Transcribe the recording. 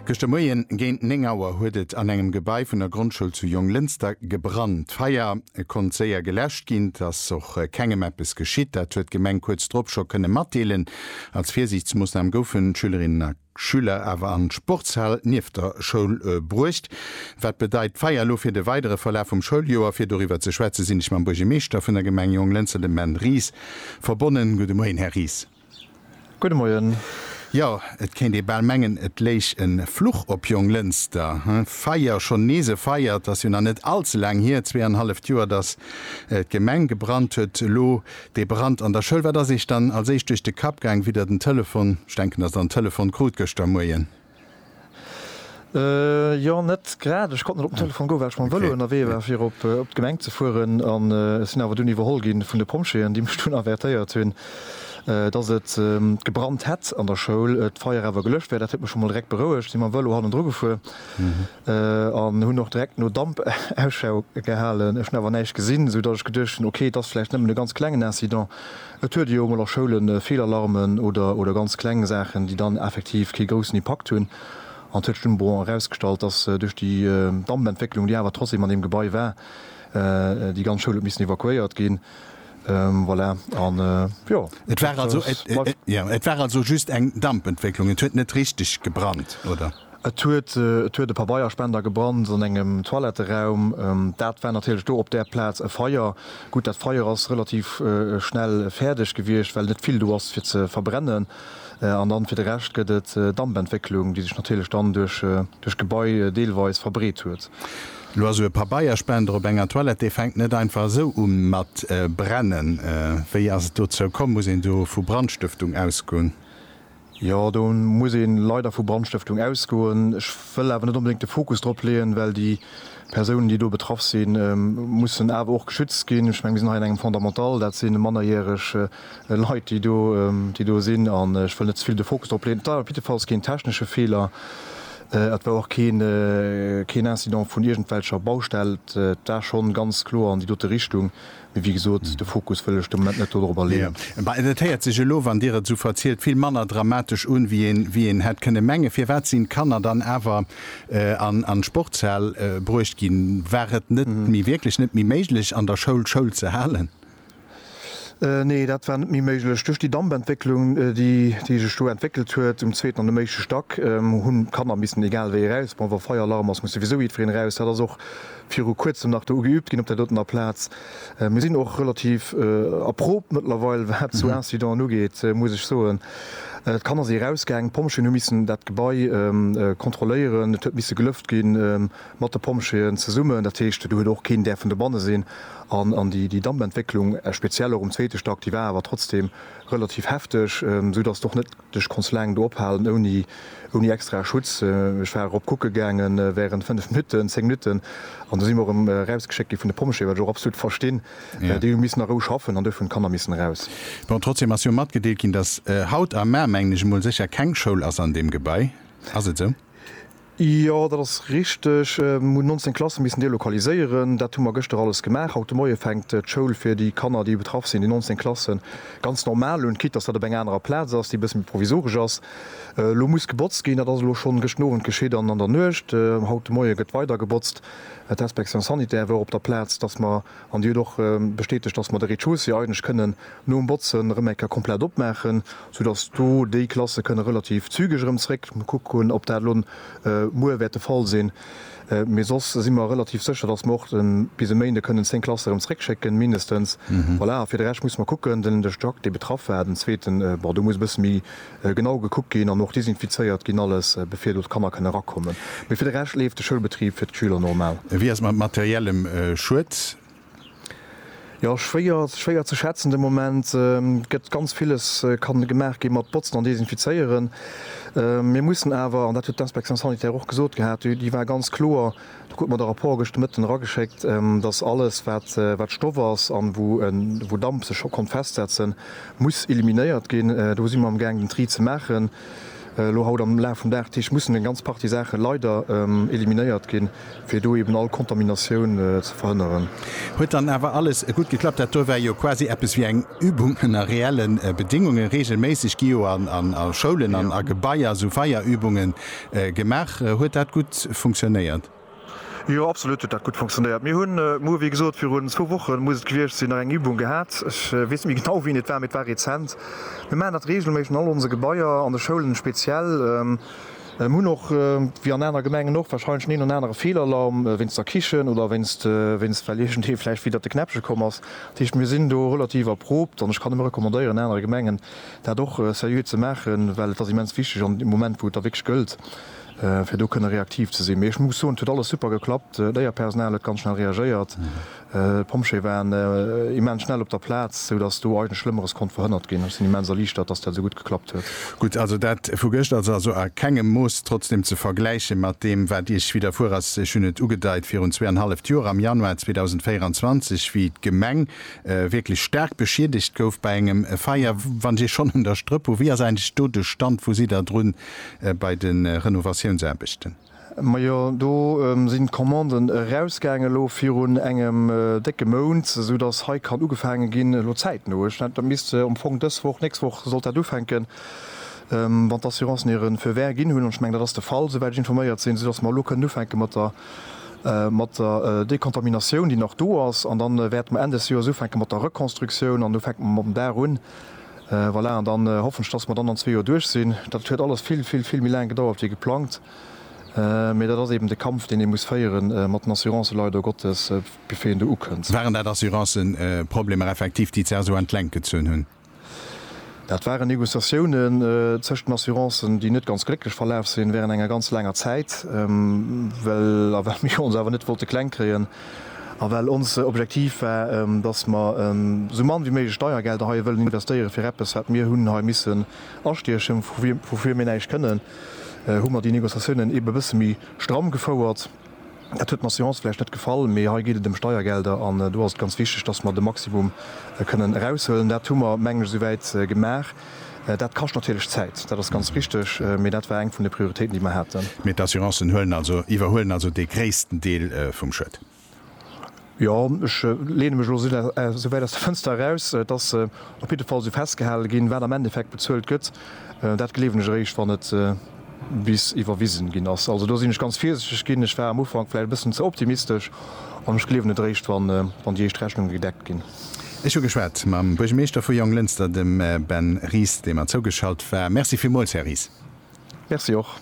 Gëschter Moien géint 9 Auer huet et an engem Gebai vun der Grondschoul zu Jonglënster gebrannt. D'Feier konnt séier geläscht ginn. Et ass och kengem eppes geschitt. Dat huet d'Gemeng kuerz drop scho kënne matdeelen. Als Virsiichtsmoossnam goufen d'Schülerinnen a Schüler awer an d'Sportshal nieft der Schoul bruecht. Wat bedeit d'Feier elo fir de weidere Verlaf vum Schouljoer? Fir doriwwer ze schwätze sinn ech mam Buergermeeschter vun der Gemeng Jonglënster, dem Ben Ries, verbonnen. Gudde Moien, Här Ries. Gudde Moien. Jo, et kéint ee bal mengen, et léich e Fluch op Jonglënster. Feier, schonn nees e Feier. Et ass jo nach net all ze laang hier, zwee an e halleft Joer, datt d'Gemeng gebrannt huet. Elo dee Brand an der Schoul. Wat ass Iech dann als éischt duerch de Kapp gaang, wéi Der den Telefon, ech denken, datt Der en Telefon krut gëschter Moien? Jo, net grad. Ech konnt net op den Telefon goen, well ech mam Vëlo ënnerwee war, fir op d'Gemeng ze fueren. An ech sinn awer dunn iwwerholl gi vun de Pompjeeën, déi mech dunn avertéiert hunn, dass et gebrannt hätt an der Schoul, d'Feier awer gelëscht wär. Dat huet mech scho mol direkt berouegt. Sinn mam Vëlo hannendru gefuer. an hunn och direkt no Damp Ausschau gehalen. Ech hunn awer näischt gesinn, sou datt ech geduecht hunn, ok, et ass vläicht nëmmen e ganz klengen Incident. Et huet ee jo emol a Schoule Feelalarmen oder ganz kleng Saachen, déi dann effektiv kee groussen Impakt hunn. An et huet sech dunn bon erausgestallt, datt duerch déi Dampentwécklung, déi awer trotzdeem an deem Gebai war, déi ganz Schoul huet missen evakuéiert ginn. Voilà, an jo, dat ass mei. Et war also just eng Dampentwécklung, et huet net richteg gebrannt, oder? Et huet et huet e Pabeierspender gebrannt an engem Toiletteraum. Dat war natierlech do op där Plaz e Feier. Gutt, dat Feier ass relativ schnell fäerdeg gewiescht, well net vill do ass fir ze verbrennen. An dann fir de Rescht gëtt et Dampentwécklung, déi sech natierlech dann duerch duerch d'Gebai deelweis verbreet huet. Lo esou e Pabeierspender op enger Toilette, dee fänkt net einfach esou u mat brennen. Wéi ass et dozou komm? Muss een do vu Brandstëftung ausgoen? Jo, do muss ee leider vu Brandstëftung ausgoen. Ech wëll awer net onbedéngt de Fokus drop leeën, well déi Persounen, déi do betraff sinn, mussen awer och geschützt ginn. Ech menge mir sinn hei an engem Fondamental, dat si mannerjäreg Leit, déi do, déi do sinn. An ech wëll net ze vill de Fokus drop leeën. Et war op jidde Falls keen technesche Feeler. Et war och keen, keen Incident vun iergendwelcher Baustell. Et war schonn ganz kloer an déi dote Richtung, Mee wéi gesot, de Fokus wëll ech de Moment net dodrobber leeën. Mä et héiert sech elo, wann Dir et esou verzielt, vill manner dramatesch un, wéi een hätt kënne mengen. Firwat sinn d'Kanner dann awer an d'Sportshal bruecht ginn? War et net méi, wierklech net méi méiglech, an der Schoul Schoul ze halen? Nee, dat war net méi méiglech. Duerch déi Dampentwécklung, déi sech do entwéckelt huet um zweeten an um éischte Stack, hunn d'Kanner missen egal wéi eraus. Bon, wa Feieralarm ass, muss souwisou jiddwereen eraus. Dat ass och viru kuerzem nach do ugeübt ginn op där dotener Plaz. Mir sinn och relativ erproobt mëttlerweil, wat esou Incidenten ugeet, muss ech soen. D'Kanner si erausgaangen, d'Pompjeeën hu missen dat Gebai kontrolléieren, et huet misse gelëft gi mat de Pompjeeën zesummen. Dat heescht, do huet och keen däerfen dobanne sinn. An déi Dampentwécklung, speziell och um zweete Stack, déi war awer trotzdeem relativ hefteg, esou datt et och net Ech konnt laang do ophalen ouni extrae Schutz. Ech war erop kucke gaange während 5 Minutten, 10 Minutten an du si mer erëm erausgeschéckt gi vun de Pompjeeë, wat ech och absolut verstinn. Déi hu missen a Rou schaffen an duerfir hunn d'Kanner missen eraus. Bon, trotzdem ass jo matgedeelt ginn, dass haut a mar, mengen ech emol, sécher keng Schoul ass an deem Gebai. Ass et esou? Jo, dat ass richteg. Mir hunn 19 Klasse missen delokaliséieren. Dat hu mer gëschter alles gemaach. Haut de Moie fänkt d'Schoul fir déi Kanner, déi betraff sinn, déi 19 Klassen, ganz normal un, quitte dass dat op enger anerer Plaz ass, déi e bësse méi provisoresch ass. Elo muss gebotzt ginn. Dat ass elo schonn gëschten Owend geschitt an an der Nuecht. Haut de Moie gëtt weider gebotzt. D'Inspection sanitaire wor op der Plaz, dass mer An déi huet och bestätegt, dass mer de Rez-de-chaussée eigentlech kënnen nom Botzen erëm eng Kéier komplett opmaachen, soudass do déi Klasse kënne relativ zügeg erëm zréck. Muss kucken, ob dat elo muer wäert de Fall sinn. Mee soss si mer relativ sécher, dass mer och bis e Méinde kënnen zéng Klasse erëm zréckschécken, mindestens. Voilà, a fir de Rescht muss mer kucken, den Diac, dee betraff war, den zweeten, bon, do muss e bësse méi genau gekuckt ginn an och desinfizéiert ginn alles, bevir do d'Kanner kënne erakommen. Mee fir de Rescht leeft de Schoulbetrib fir d'Schüler normal. Wéi ass et mat materiellem Schued? Jo, schwéier, schwéier ze schätzen de Moment. Et gëtt ganz villes ka gemaach gi mat Botzen an Desinfizéieren. Mir mussen awer, an dat huet d'Inspection sanitaire och gesot gehat, déi war ganz kloer, Du krut mer de Rapport gëscht de Mëtten erageschéckt, dass alles, wat Stoff ass a wou Damp sech scho konnt festsetzen, muss eliminéiert ginn. Do si mer amgaang, den Tri ze maachen. Elo haut am Laf vum Dag Tisch mussen eng ganz Partie Saache leider eliminéiert ginn, fir do eeben all Kontaminatioun ze verhënneren. Huet dann awer alles gutt geklappt. Dat do war jo quasi eppes wéi eng Übung ënner reelle Bedéngungen. Reegelméisseg gi jo a Schoulen an a Gebaier esou Feierübungen Gemaach. Huet dat gutt funktionéiert? Jo, absolut huet dat gutt funktionéiert. Mir hunn muer, wéi gesot, virun zwou Wochen, muss et gewiescht sinn, nach eng Übung gehat. Ech weess net méi genau, wéini et war, mee et war rezent. Mir maachen dat reegelméisseg an all onse Gebaier, an de Schoulen speziell. Mir hunn och, wéi an aner Gemengen och, warscheinlech den een oder anere Feelalarm wéinst der Kichen oder wéinst, wéinst well iergendee vläicht widder de Knäppche komm ass. Dat heescht, mir sinn do relativ erproobt an ech kann nëmme recommandéieren, anere Gemengen dat och seriö ze maachen, well et ass immens wichteg an deem Moment, wou et da wierklech gëllt, fir do kënne reaktiv ze sinn. Mee ech muss soen, et huet alles super geklappt. D'Léierpersonal huet ganz schnell reagéiert, d'Pompjeeë waren immens schnell op der Plaz, sou datt do eigentlech Schlëmmeres konnt verhënnert ginn. Ech sinn immens erliichtert, datt dat esou gutt geklappt huet. Gutt, also dat vu gëscht ass also a kengem Mooss trotzdem ze vergläiche mat deem, wat Iech widderfuer ass. Ech hunn et ugedeit virun zweeanhalleft Joer, am Januar 2024, wéi d'Gemeng wierklech staark beschiedegt gouf bei engem Feier. Wann ech schonn un der Strëpp hu, wéi ass eigentlech do de Stand? Wou sidd Der drun bei de Renovatiounsaarbechten? Majo, do sinn d'Commanden erausgaangen elo virun engem décke Mount, esou datt hei kann ugefaange ginn elo zäitno. Ech mengen, dat misst am Fong dës Woch, nächst Woch sollt dat ufänken, wann d'Assurancen hire Feu vert ginn hunn. An ech mengen, dat ass de Fall, esouwäit ech informéiert sinn, esou datt mer elo kënnen ufänke mat der mat der Dekontaminatioun, déi nach do ass, an dann wäerte mer Enn des Joers ufänke mat der Rekonstruktioun an do fänke mer mam Daach un. Voilà, an dann hoffen ech, dass mer dann an zwee Joer duerch sinn. Dat huet alles vill, vill, vill méi laang gedauert wéi geplangt, mee dat ass eben de Kampf, deen ee muss féiere mat den Assurancen, leider Gottes, bevir een do ukënnt. Waren dat Assuranceproblemer effektiv, déi d'Serso an d'Längt gezunn hunn? Dat waren Negociatiounen tëscht den Assurancen, déi net ganz glécklech verlaf sinn, während enger ganz laanger Zäit, well a well mir ons awer net wollte kleng kréien a well ons Objektiv war, dass mer esou mann wéi méiglech Steiergelder hei wëllen investéieren, fir eppes, wat mir hunn hei missen astiechen, woufir mir näischt kënnen, hu mer déi Negociatiounen eeben e bësse méi stramm gefouert. Dat huet mer Seance vläicht net gefall, mee hei geet et ëm Steiergelder an do ass et ganz wichteg, dass mer de Maximum kënnen eraushuelen. Dat hu mer, mengen ech, esouwäit gemaach. Dat kascht natierlech Zäit, dat ass ganz richteg, mee dat war eng vun de Prioritéiten, déi mer haten. Mee d'Assurancen huelen also, iwwerhuelen also dee gréissten Deel vum Schued? Jo, ech leene mech elo esou wäit aus der Fënster eraus. Et ass op jidde Fall esou festgehale ginn. Wat am Endeffekt bezuelt gëtt, dat gleewen ech eréischt, wann et bis iwwerwisen ginn ass. Also do sinn ech ganz virsichteg ginn. Ech war am Ufank vläicht e bëssen ze optimistesch an ech gleewen et eréischt, wann déi éischt Rechnunge gedeckt ginn. Ech hu geschwat mam Buergermeeschter vu Jonglënster, dem Ben Ries, dee mer zougeschalt war. Merci villmools, Här Ries. Merci och.